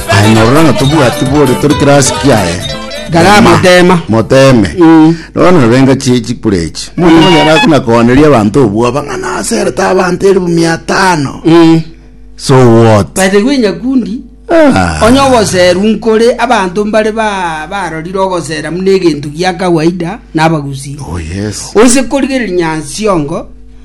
Aye norora ng'a tobwati bore tori kirasi kiaye. Gara Tema. motema. Moteme. Mm. Nono narenga chi chikure echi. Mono monyara akuna koaneria abanto obwoba ng'a naserete abanto elfu mia tano. Mm. So what? But gwe nyakundi Ah. onye ogoseru nkore abanto mbare ba- barorire ogosera muna egento gia kawaida nabagusi Oh yes. onse korigereria nyansiongo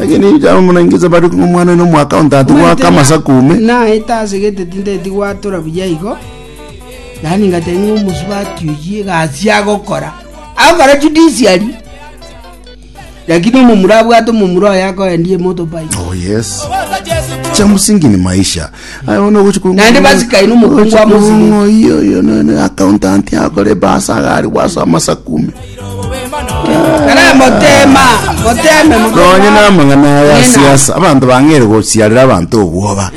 Lakini ijao muna ingize bari kung'u mwana oino mwaka ontatu Omanyete gwaka na- amasaku ume. naete ase gete tindeti gwatora buya igo yaani ngateba ng'a omosubati oyi egasi agokora agokora judiciary lakini omomura abwate omomura oyo akoendia emotobaiki Oh yes. Cha msingi ni maisha. Aye bono ogochi kong'oyia. Naende basikaine omokungu amo Ogochi nsini. kong'oyia oyo no- no accountant akore ebasa iga aria gwasa amasaku ime. Kare motema, moteme, motema. Nonye namang'ana aya Nena. siasa abanto bang'eire gosiarera abanto obwoba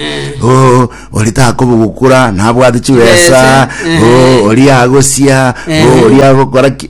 o ori takoba gokura nabwate chibesa Chibesa, o ehe. ori agosia o Ehe. ori agokora ki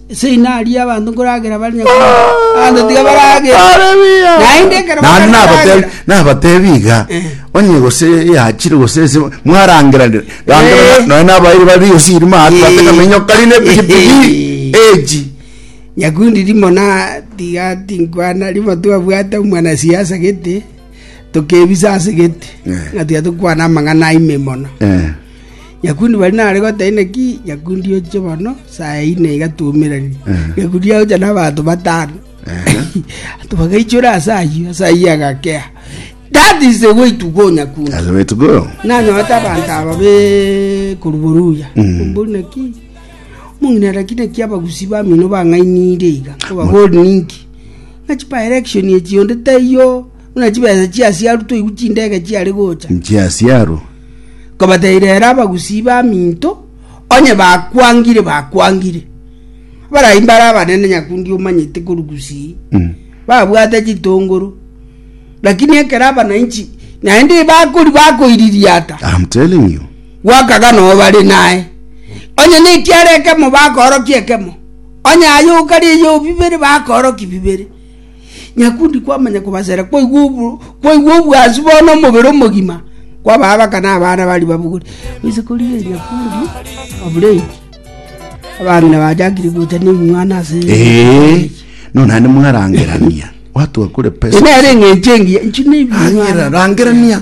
Seino aria abanto nkoragera bare abanto tiga baragera. Naende ekero Naende nabatebi- baragera. nabatebi iga Eh. onye gose yachire gose ese mwarangeranire range Eh. nonya- nonya nabairi bari osiri maate Eh. batekamenyo kari ne pikipiki Eh. eji Nyakundi rimo na tiga tinkwana rimo twabwate omwana siasa gete tukebisa ase gete Eh. ng'a tiga tukwana amang'ana aime mono Eh. Nyakundi bari nare goteba, Inaki nyakundi ochie bono saa ya ine iga twaumeranie? Nyakundi agocha n'abanto batano. Abanto bagaichora ase ayio, ase ayio agakea. That is the way to go nyakundi. That's the way to go. nanyorete abanto aba be koruboruya mbori naki mong'inera ki naki abagusi bamino bang'ainire iga abagori ninki ng'a chipa election echi onde taiyo buna chibesa chiasiaru toigwe chindege chiare gocha Nchiasiaro. Nkabateira ere abagusii b'aminto, onye bakwangire, bakwangire. Abarai mbare abanene nyakundi omanyete korwa gusii, babwate chitongoro, lakini ekero abananchi naende bakori bakoiririata, I'm telling you. gwakaga noo bare naye onye nekiara ekemo bakorokia ekemo onye aye okari eyobi bibere bakoroki bibere Nyakundi kwamanya kobasera kwaigwa obo- kwaigwa obwansu bono omobere omogima kwaba abaka na abana bari babugore gose korie nyakundi oburei abang'ina bachakire gocha nemwana ase Eh, no naende mwarangerania watu akure pesa nere eng'encho engiya inchi Angera, nebinywana rangerania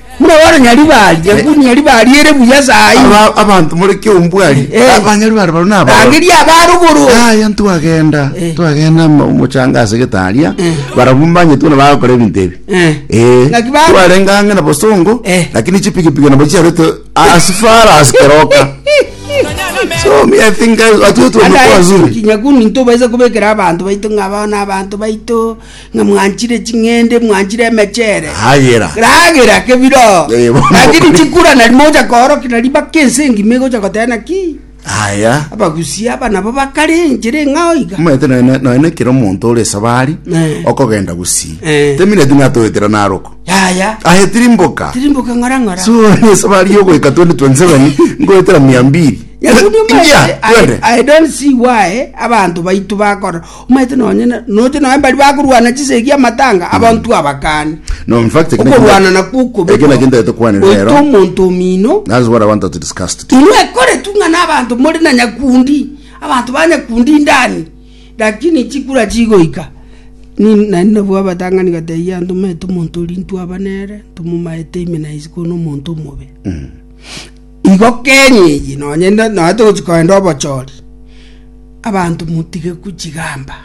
Buna baranyari bari, nyakuniari bari ere buya sayi. Aba- abanto more kiombwari Eh. abanyari bare baro nabo Rangeria abaruguru. aya ntwagenda Eh. twagenda mo- mochanga ase getaria Eh. barabwo mbanyetwe na bagokora ebinto ebi Eh. Eh, Ngaki ba- twarenga ang'e na bosongo Eh. lakini chipikipiki nabo chiarete asifara asikeroka so me i think guys watu wetu wamekuwa wazuri kinyakuni ntobaiza kubekera abanto baito ng'abao na abanto baito Ng'a mwanchire ching'ende, mwanchire emechere. Ragera. Ragera kebiro. Eh, bo- Lakini chikura nari mocha koorokia nari baka ense engima egocha goteba naki. Aya. Abagusia aba nabo bakare enchera eng'ao iga. Omanyete noe ne- noe nekero omonto ore esabari Eh. okogenda gusii Eh. temineti natoetera naroko Yaya. ahetiri mboka Tirimboka ng'ora ng'ora. so ni esabari yogoika 2027 ngoetera mia mbiri Nyakundi Ingia, omanyete, I, twende. I don't see why abantu baitu bakora Omaete nonye na- noche nonye mbari bakorwana chisegi amatanga abanto abakane No, in fact, ekina okorwana kinta- nakwo okobekwa ekina kinta tukwanire oite rero. omonto omino That's what I want us to discuss today. inwe ekoretu ng'a nabanto more na nyakundi abanto ba nyakundi ndani lakini chikura chigoika Ni- nari nabwo abatang'ani gatebia abanto maete omonto oria ntwaba nere tomomaete imena ise kono omonto omobe Igo kenya eye nonye togochi korenda obochori, abanto motige kochigamba.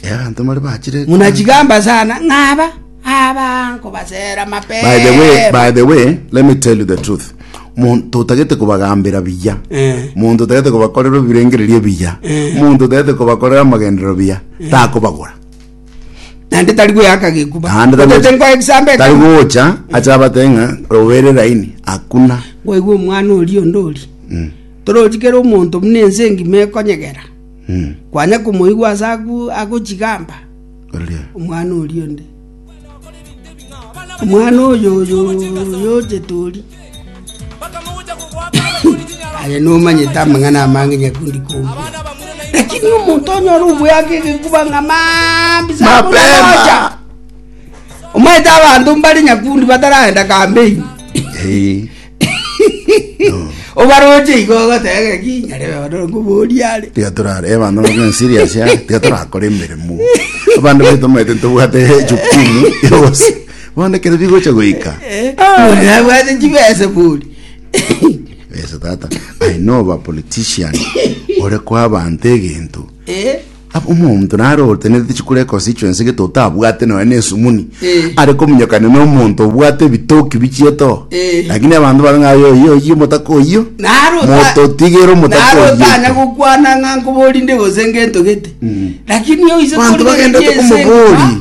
Abanto mbare bachire ekwana. Munachigamba sana ng'aba aba nkobasera mapema. By the way, by the way, let me tell you the truth. Muntu otagete kobagambera biya. Eh. Muntu otagete kobakorera ebirengererio biya. Eh. Muntu otagete kobakorera amagenderero biya. Takobagora. naende tari gweaka geguba Naende tari- otete nkoe egesambe tari ekemo gocha acha abate ng'a robere raini hakuna gwaigwa omwana ori onde ori Mm, torochi kera omonto buna ense engima ekonyegera mm, kwanya komoigwa ase agu agochigamba oria. omwana ori onde omwana oyo oyo oyo ochetori Aye nomanyete amang'ana amange nyakundi kobua, lakini omonto onyore oboyaka egekuba ng'a mambi samoja. Omanyete abanto mbare nyakundi bataragenda kambeini obaroche igo ogotega ki nyare bono ngoboria are tiga torare eh, abanto bakore serious ya tiga torakore emeremo abande baito omanyete ntobwate jukumu yose Bono ekero bigocha goika, Bori nabwate chibesa bori. besa tata, I know of a politician ore kwa abanto egento. Eh, Ab- omonto nare otenete chikura econstituency gete otabwate nonya na esumuni Eh. are kominyokana na omonto obwate ebitoki bichieto Eh. lakini abanto bare ng'a oyo oyo oyo omotaka oyo naro osa- mototigere omotaka naro otanya oyo gokwana ng'a nkoborinde gose ngento gete lakini oise Banto kori bagenda gari ase tokomobori. engima,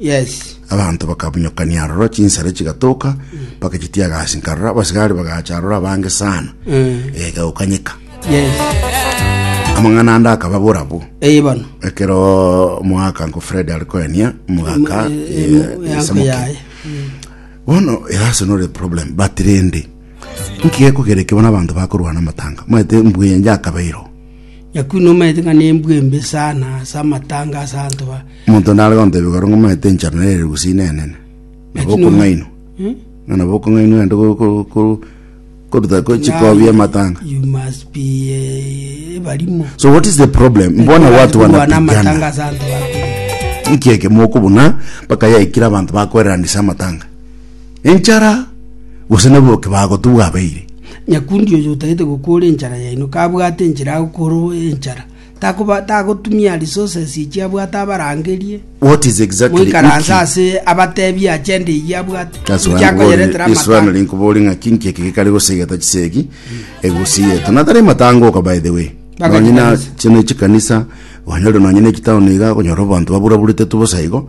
Yes. Abanto bakabunyokania aroro, chinsare chigatoka, mpaka chitiaga ase nkarora, abasigari bagacha aroro abange sana, Eh. egakanyeka. Yes. Amang'ana ande akaba borabo. Eye bono. Ekero mwaka nko Fred arikoenia mugaka Eh, eh, eh, mu- yanko esamoke. yaye. bono erase nore problem but rende nkigekogereke bono abanto bakorwana amatanga mwete mbuya njakabeiro Nyakundi nomaete ng'a nembua embe sana ase amatanga ase abanto ba... Omonto nare gontebia igoro ng'a omaete enchara nere ere gusii nenene, nabo Lakini- okong'ainwa. Hmm? Ng'a nabo okong'ainwa ande ko- ko- ko- koruta ko- chikobia amatanga. You must be eh, ebarimo. So what is the problem? Mbona watu Kurwana amatanga wanapigana. ase abanto ba... Nkieke mokobuna mpaka yaikire abantu bakoererania ase amatanga. enchara, gose na bokebago tobwabeire. Nyakundi oyo otagete gokoora enchara yaino kabwate enchera agokoorwa enchara, takoba tagotumia resources echi abwate abarangerie, What is exactly moikaranse Wiki? ase abateebie agenda eyio abwate, That's why inki I'm worried. akoyeretera This one amatanga. linkubori ng'a kinki eki gikari gosegeta chisegi egusiyete natari matangoka by the way Mpaka nonye na chikanisa. chino chikanisa onye ore nonye ne chitown iga okonyora abanto baburaburete tu bosa igo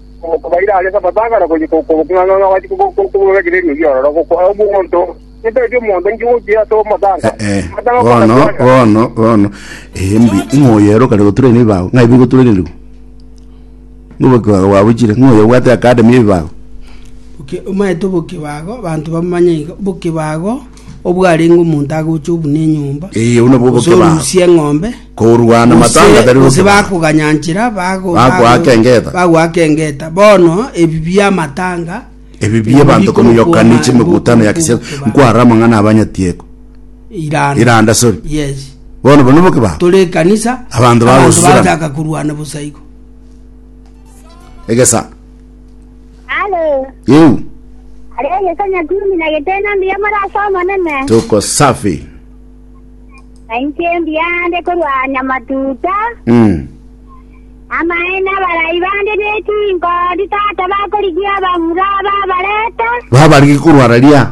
Okobaira aria Sabato agakora gochia koboka ng'a ng'a gwachia koboka ekererio ki'ororo, gokoa omonto, Nintebie omonto inki gochia ase omotanga? Eh, Omotanga bono, okomotogia, bono, bono. Eh, mbi, ng'a oyero kare goturana ebibago, ng'a ebi goturanirwe. Ngoboki bwago bwabuchire, ng'a oyo obwate academy y'ebibago. Oke- omanyete obokebago, banto bamanye iga, obokebago obwarenge omonto agocha obuna enyomba, Ee, obwo nabwo gose oboke bwao. orusie eng'ombe, Korwana matanga tari gose oboke bwao. bakoganyanchera bago- Bagoaka bago- engeta. bagoaka engeta bono ebi biamatanga Ebi bie banto komoyokana iche emegutano ya kisiasa. Nkwara amang'ana aba nyatieko. iranda Iranda, sorry. yes Bono bono boke babo. tore ekanisa Abanto bagosusurana. bataka korwana bosa igo Egesa. Halo. Yeu, Halo Yesu Nyakumi na Getena mbuya muri ase Omonene. tuko safi. Nainche mbuya ande korwa Nyamatuta. Mm. Amaene abarai bande nechinkodi tata bakorigia abamura babareta. Babarigi korwara ria.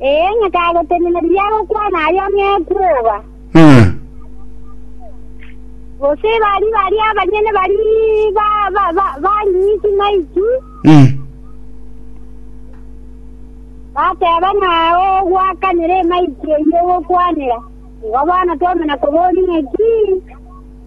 Ee, ng'a kagotenena riria agokwana aria nekwoba. Ng'a. Gose bari baria abanyene bari ba- ba- ba- bari ng'iti naiti, Ng'a. bateba ng'a ogwakanera emaiti eyio ogokwanera. Igo bono twamana koboria ng'a ki.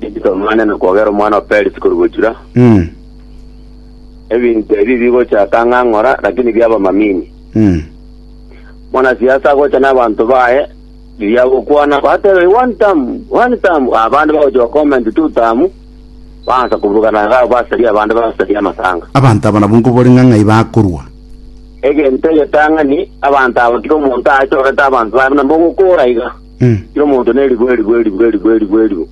Rituko Mane nokwogera omwana o Perisi korwa gochura, Mm. ebinto ebi bigochaka ng'a ng'ora, lakini biaba mamini. Mm. Mwanasiasa agocha n'abanto baye, riria agokwana batebe one term, one term, abande bagocha gocomment two term, baansa koburugana iga basaria abande basaria amatanga. abanto aba nabo nkobore ng'a ng'ai bakorwa Egento egetang'ani, abanto aba tiga omonto aachorete abanto baye buna mbogokora iga. Kera omonto neribo, eribo, eribo, eribo, eribo, eribo.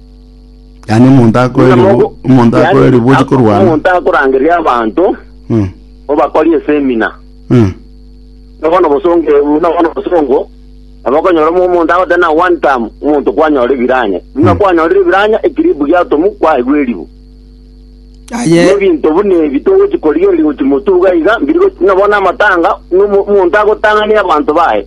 Yaani omonto akoe Buna eribu, mogo- omonto akoe yaani, eribu ochi ak- korwana. Omonto akorangeria abanto Mm, obakori esemina mm, nobono bosonge nobono bosongo abakonyora omo- omonto agote na one time omonto kwanyora ebiranya buna Mm. kwanyorire ebiranya ekiribu giatomu kwaigwa eribu aye ebinto buna ebi togochi korigereria gochi motuga iga mbiri gochi nobono amatanga nomo- omonto agotang'ania abanto baye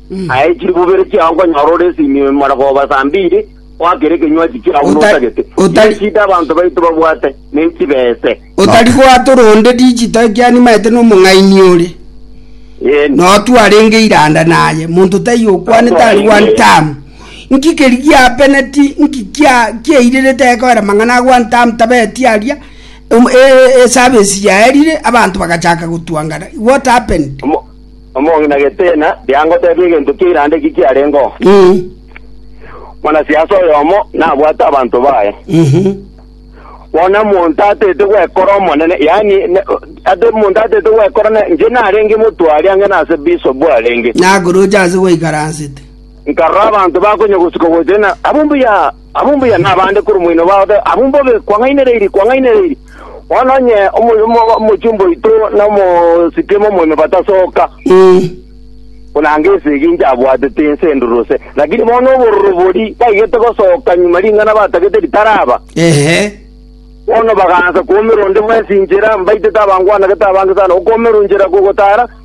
Aye chibubere chiao nkonyora ore esinyo imara koba saa mbiri, oakere ekenywachi kiao buna Ota- otagete. ota- Nechida abanto baito babwate, nechibese. otari gwatora onde rigito ekianimaete nomong'aini ore Ee, notu arenge iranda naye monto taiyo okwanete ari one term nki keri giapeneti nki kia- kiairerete aye koera mang'ana a one term tabeti aria um, e- e- esabesi yaerire abanto bagachaka gotwangana what happened Omo- Omong'ina getiina, riangoteeba egento kia Iranda eki kiarengeo. Omonasiasa oyomo nabwate abanto baye, bono omonto atete gwekora omonene, yaani ate omonto atete gwekora ne, inche narenge motwari ange nase bisobu arenge. Nakoroche ase gwaikaransete. Nkarora abanto bakonya gosika gocha, na, Abwo mbuya! Abwo mbuya nabande korwa omoino bwao, abwo mbobe kwang'ainereiri, kwang'ainereiri. Bono onye omochumba oito na omositiame omoime batasoka, buna anga esegi inche abwatete ense enduruse, lakini bono obororo bori baigete gosoka nyuma ring'ana batagete ritaraba. Bono bagaancha koomera onde bwensi inchera, mbaitete abangwanagete abange sana okoomera inchera kogotaara.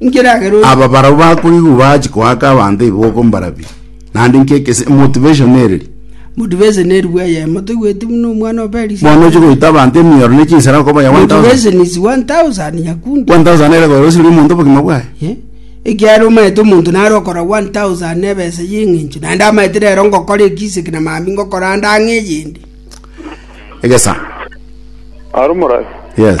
Inki eragera oyo Aba barabwo bakorigwa bachi koaka abanto ebiboko mbarabie. Naende inki ekese motivation ereri? motivation eri bwa eyemo toigweti buna omwana o Perisi Bono oche goita abanto emioro ne chinsera okoba ya 1000. motivation is 1000 nyakundi 1000 ere koira osirie omonto obogima bwaye. Eh? ekiagera omaete omonto nare okora 1000 na ebesa ya eng'encho naende amaete rero ngokora ekisiki na mambia ngokora ande ang'e eyende Egesa. Arumorasi. Yes.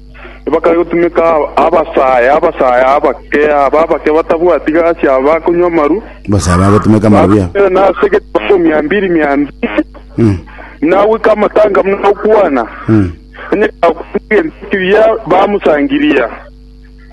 Tibakare gotumeka abasaae, abasaae abake, aba abake batabwati gasi, aba bakonywa amaru, Abasaae bagotumeka amarobia. bagotumeka na ase egetambo mia mbiri mia mbiri, Mm. buna goika amatanga buna gokwana, Mm. onye kagokonya egento kiya bamosangiria.